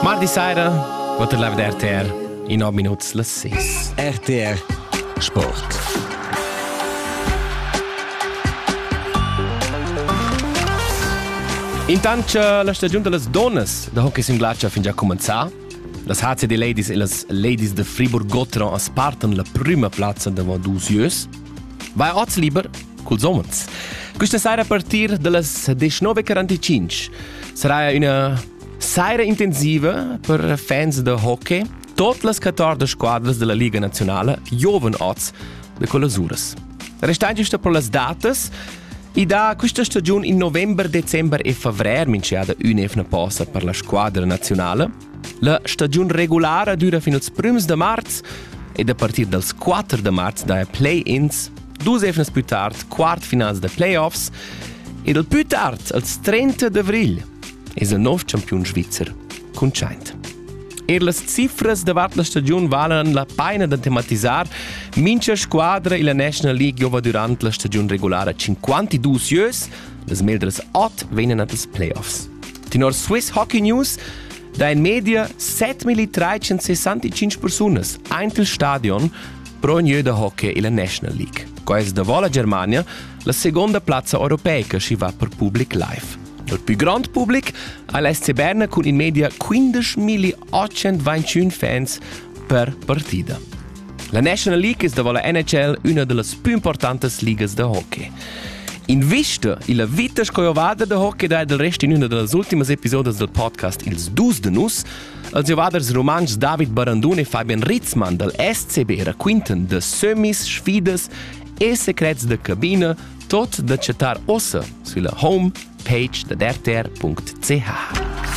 Mardi saira, quatter live RTR, in nov minuts las sis. RTR Sport. Intant cha la stagiun da las donnas da hockey sin glatscha fin già cumenzà, las HCD Ladies e las Ladies de Friburg-Gotteron spartan la prüma plazza davant dusieus Vai oz liber culs umens. Questa saira a partir das 19.45 sarà una saira intensiva per fans de hockey. Tot las 14 squadras della Liga Nazionale giovan oz de colasuras. Restando isto per las datas, e da questa stagione in november, december e februar minchiada un'evna posa per la squadra nazionale. La stagiun regulara dura fin als prüms da marz ed a partir dals 4 da marz daja play-ins, dus efnas pü tard quartfinals da playoffs ed al pü tard als 30 d'avrigl es il nov champiun svizzer cuntschaint. Er las cifras davart la stagiun valan la paina da tematisar mincha squadra illa National League giova durant la stagiun regulara 52 ieus, las meldras ot vegnan at ils playoffs. Tenor Swiss Hockey News da in media 7365 persunas ein il stadion pro ognuno da hockey illa National League. Quais davò la Germania la seconda plazza europeica schi va per public live. Il più grande pubblic ha l'SC Berna con in media 15.821 fans per partita. La National League es davo la NHL üna da las pü importantas ligas da hockey. Invista illa vita sco ovada da hockey dà del rest in üna da las ultimas episodas del podcast Ils dus de nus, als ovaders rumantschs David Barandun e Fabian Ritzmann dal SCB raquintan de semis, sfidas e secrets da cabina, tot da chattar ossa sulla homepage da RTR.ch.